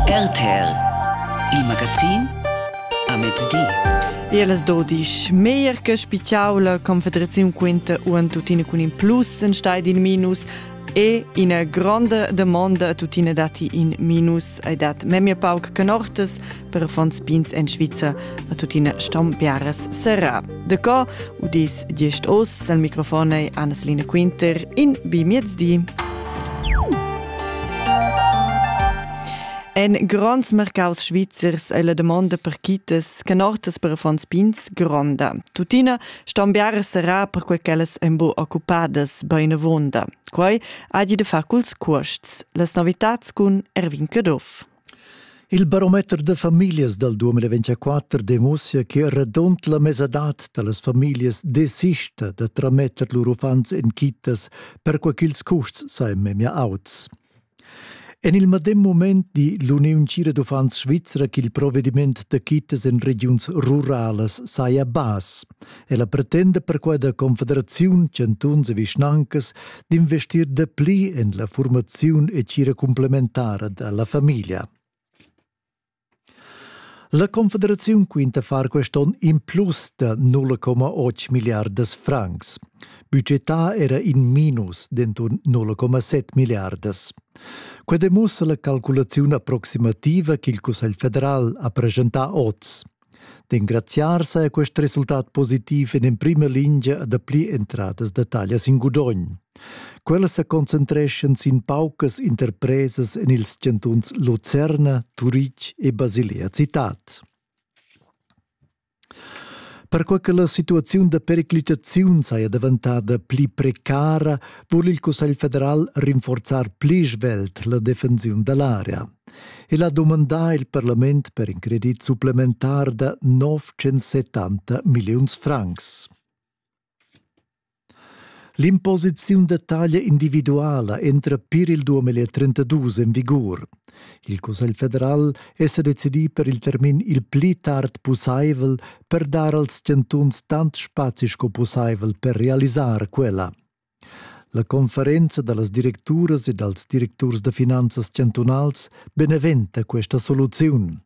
RTL Il magazin a mezdi. Tier las dodisch meglier che spitgau la Confederaziun quinta uan tuttina cun in plus en stai in minus e ina gronda demanda tuttina dati in minus ei dat memia pauc canortas per affons pins en Svizra a tuttina stom biaras serra. De co u dis gest os al microfonei Annaslina Quinter in bi miezdi. En gronds mercaus svizzers è la domanda per quitas che nortas per affons pins gronda. Tuttina ston biare serrà per quei ch'ellas en bo occupadas bein avonda. Quei ha di de far culs cuosts. Las novitats cun Erwin Caduff. Il barometer da famiglias dal 2024 demussa che radund la mesadad da las famiglias desista da trametter lur uffants en kittas perquai ch'ils custs sajan memia auts. En il medem mument di l'Uniun Cira d'uffants svizra ch'il provediment da kittas en regiuns ruralas saja bass. Ella pretenda perquai da Confederaziun, chantuns e vischnancas d'investir dapli en la formaziun e tgira complementara dalla famiglia. La Confederaziun quinta far quest'on in plus da 0,8 miliardas francs. Budgetà era in minus d'enturn 0,7 miliardas. Quai demussa la calculaziun approximativa ch'il Cussegl federal ha presentà oz. D'engraziar sa ha quest resultat positiv en emprima lingia da pli entradas da taglia sin gudogn. Quellas sa concentreschan sin paucas interpresas en ils chantuns Lucerna, Turitg e Basilea citad. Perquai che la situaziun da periclitaziun saja daventada pli precara, vul il Cussegl federal rinforzar pli svelt la defensiun da l'area. El ha dumandà il parlament per in credit supplementar da 970 milliuns francs. L'imposiziun da taglia individuala entra pir il 2032 en vigur. Il Cussegl federal è sa decidì per il termin il pli tard pussaivel per dar als chantuns tant spazi sco pussaivel per realisar quella. La conferenza dallas directuras e dals directurs da finanzas chantunals beneventa questa soluziun.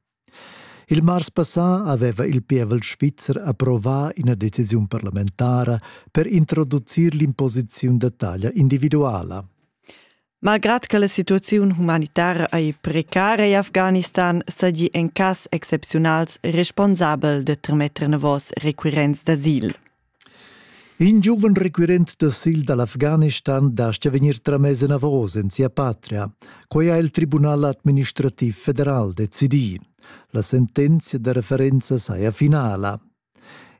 Il mars passà aveva il pievel svizzer approvà ina decisiun parlamentara per introducir l'imposiziun da taglia individuala. Malgrad che la situaziun humanitara ei precara in Afghanistan, seigi en cass excepziunals responsabel de trametter novos requirents d'asil. In giuven requirent d'asil dall'Afghanistan dastga vegnir tramess enavos en sia patria. Quei ha il Tribunal administrativ federal decidì. La sentenzia da referenza saja finala.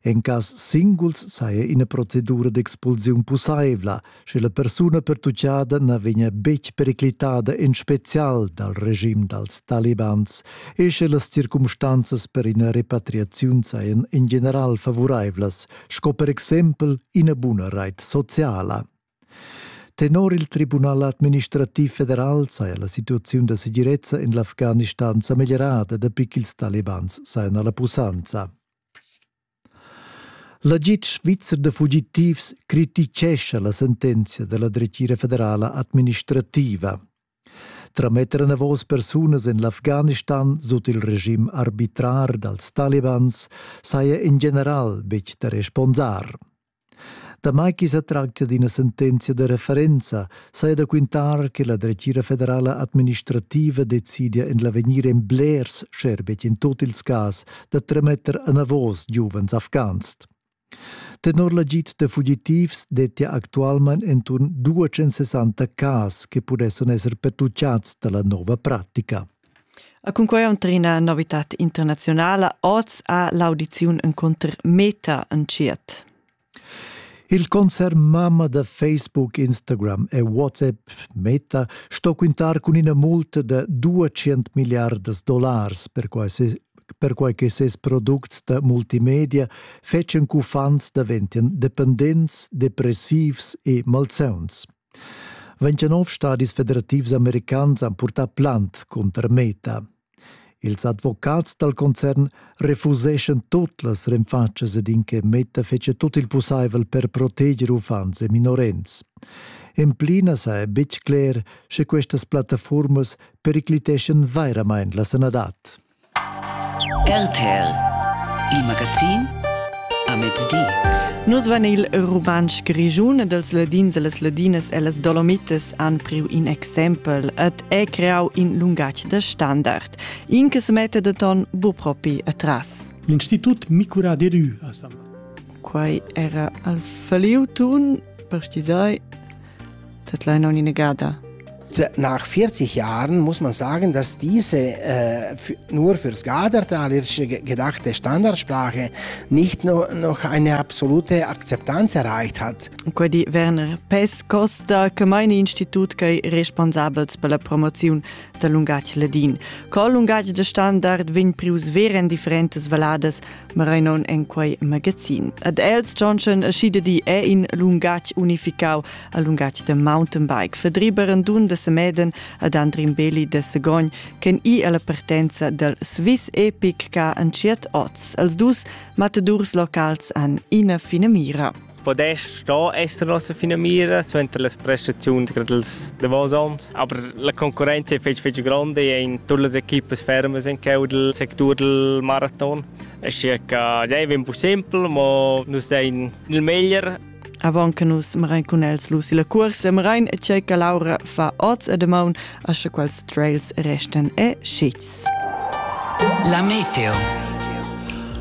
En cass singuls saja ina procedura d'expulsiun pussaivla, sche la persuna pertutgada na vegnia betg periclitada en spezial dal regim dals talibans e sche las circumstanzas per ina repatriaziun sajan in general favuraivlas, sco per exempel ina buna rait sociala. Tenor il Tribunal administrativ federal saja la situaziun da segirezza en l'Afghanistan sa meglierada dapi ch'ils talibans sajan a la pussanza. L'agid svizzer da fugitivs criticescha la sentenzia da la dretgira federala administrativa. Trametter enavos persunas en l'Afghanistan sut il regim arbitrar dals talibans saja in general betg da responsar. Damai ch'i sa tractia d'ina sentenzia da referenza, saja da quintar che la dretgira federala administrativa decidia en l'avegnir en blers scherbetg in tut ils cas da tremetter enavos giuvens afghans. Tenor l'agid da fugitivs dettia actualmain enturn 260 cas che pudessan esser pertutgads da la nova pratica. A cunquai entra ina novitad internaziunala oz ha l'audiziun encunter Meta entschiet. Il concern mamma da Facebook, Instagram e WhatsApp, Meta, sto quintar cun ina multa da 200 miliardas dollars per quasi perquai che ses products da multimedia fetschen ch'uffants daventien dependents, depressivs e malsauns. 29 stadis federativs americans han purtà plant cunter Meta. Ils advocats dal concern refuseschan tut las renfatschas ed in che Meta fetschia tut il pussaivel per proteger uffants e minorens. En pli na saja betg cler, sche questas plattaformas pericliteschan vairamain la sanadad. RTL Il magazin a mezdi. Nus van il rumantsch grischun ed els ladins e las ladinas e las dolomitas han priu in exempel et è creau in lungatg da standard. In che se mette de ton bu propi atras. L'Institut Micura de Rü a San Quai era al Faliu Tun, per ti sai, Dat leina un'inegada. Nach 40 Jahren muss man sagen, dass diese äh, nur für das Gadartalische gedachte Standardsprache nicht nur noch eine absolute Akzeptanz erreicht hat. Quedi Werner Pes Costa, che meine Institut che responsabels per la promozione del lungatg ladin. Col lungatg de standard vegn prius veren differentes valadas Marainon en quei magazin. Ad els Johnson Schidedi è in lungatg unificau, a lungatg de mountainbike, verdriberen dun de Semeden ad Andrin Beli de Segogn, chen i alla partenza del Swiss Epic ca an tschiet oz. Els dus matadurs locals han ina fina mira. podess sto esser nossa finamira suenter las prestaziuns dals davos onns, aber la concurrenza è fitg fitg grande in tutte le equipe ferme in cau del sector del marathon. Assia che dei vem più semplice, ma nus dein il meglier. Avant che nus marain cun els lu si la cuorsa, marain e tgei che Laura fa oz e damaun asche quals trails restan e schits. La meteo.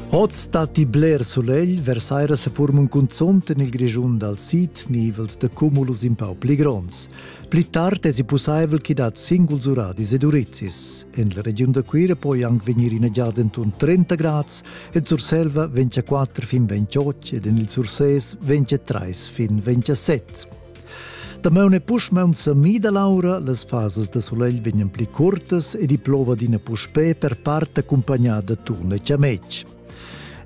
Oz datti bler sulegl, versaira se forman cunzont en il Grischun dal sid nivels de cumulus in pau pli gronds. Pli tard è si pussaivel che dat singuls uradis ed urizis. En la regiun da Cuira può anche venire in giada intorno 30 gradi e Surselva 24 fin 28 ed en il Surses 23 fin 27. Damaun e puschmaun sa mida l'aura, las fasas da solegl vegnan pli curtas ed i plova d'ina puspè per part accumpagnada turn e chametg.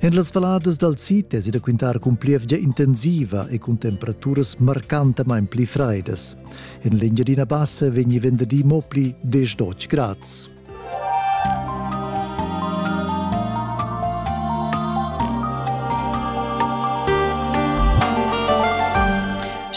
En las valadas dal sid es da quintar cun plievgia intensiva e cun temperaturas marcantamain pli freidas. En l'Engiadina Bassa vegni venderì mo pli 10 grads.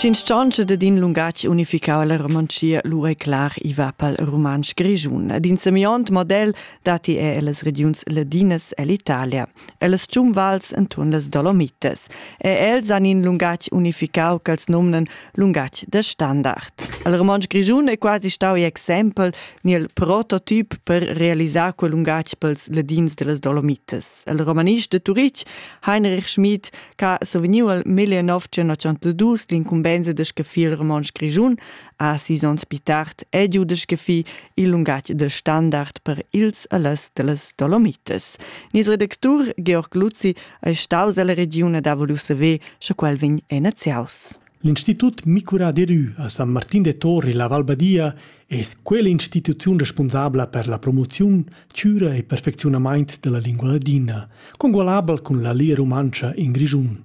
Sch'instanza dad in lungatg unificau la romanzia lu è clar i va pal romansch grischun. Ad in semiont model datti er las regiuns ladinas ell'Italia. ellas giunvals enturn las Dolomites, e els han in lungatg unificau ch'els nomnan lungatg da standard. Il romontsch grischun è quasi stau in exempel ni il prototip per realisar quel lungatg pels ladins dellas Dolomites. Il romanist de Turich Heinrich Schmidt che ha survegniu il 1902 l'incumbensa de scaffir il romontsch grischun ha sis onns pi tard edudeschefì il lungatg de standard per ils e las dellas Dolomites. Nis redactur Georg Luzzi è staus alla regione da voulu saver, sche quel vegn enaziaus. L'Institut Micura de Rü a San Martin de Torri, la Valbadia, es quell'instituziun responsabla per la promoziun, cura e perfecziunamaint della lingua ladina, congualabel cun la lia rumantscha in Grischun.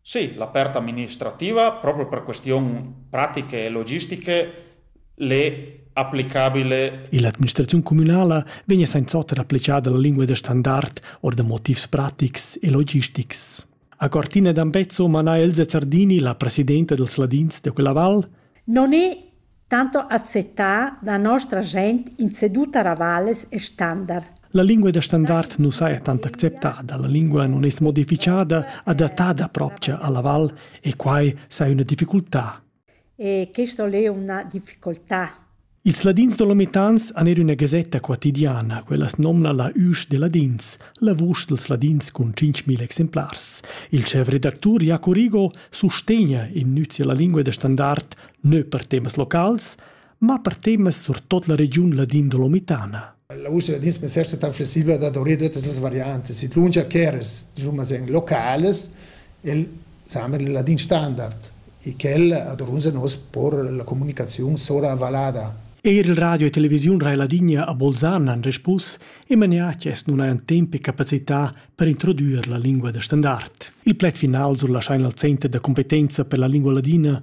Sì, la part administrativa, proprio per questiun pratiche e logistiche, l'é applicabile. Ill'administraziun cumünala vegna sainz'oter applicada la lingua da standard or da motivs pratics e logistics. A Cortina d'Ambezzo mana Elsa Zardini, la presidenta dels Ladins de quella val, Non è Tanto acceptà da nostra gent in seduta ravales e standard. La lingua da standard nu saja tant acceptada, la lingua non es modifichada, adattada propcha alla val e quai saja üna difficultà. E questo è una difficoltà. Ils ladins dolomitans han er üna gasetta quotidiana, quella as nomna la Üsch de Ladins, la vusch dels ladins cun 5.000 exemplars. Il chef redactur Jaco Rigo sustegna in nüzia la lingua da standard nö per temas locals, ma per temas surtot la regiun Ladin Dolomitana. La Usria dispensersa tan flexibla da dovrei todas las variantes. Sit lungia cheres, diciamo en locales, el samer il ladin standard e quel ad orunza nos por la comunicazione sora valada. Eir il radio e televisiun Rai Ladinia a Bolzan han respus e maniaches nun hajan tempo e capacità per introdurre la lingua da standard. Il pled final sur la Scheinl Center da competenza per la lingua ladina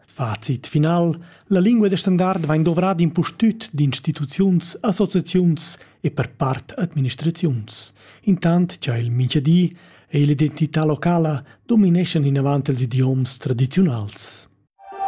Fazit final La lingua da standard vain dovrada impustüt d'instituziuns, associaziuns e per part administraziuns. Intant cha il minchadi e l'identità locala domineschan inavant ils idioms tradiziunals.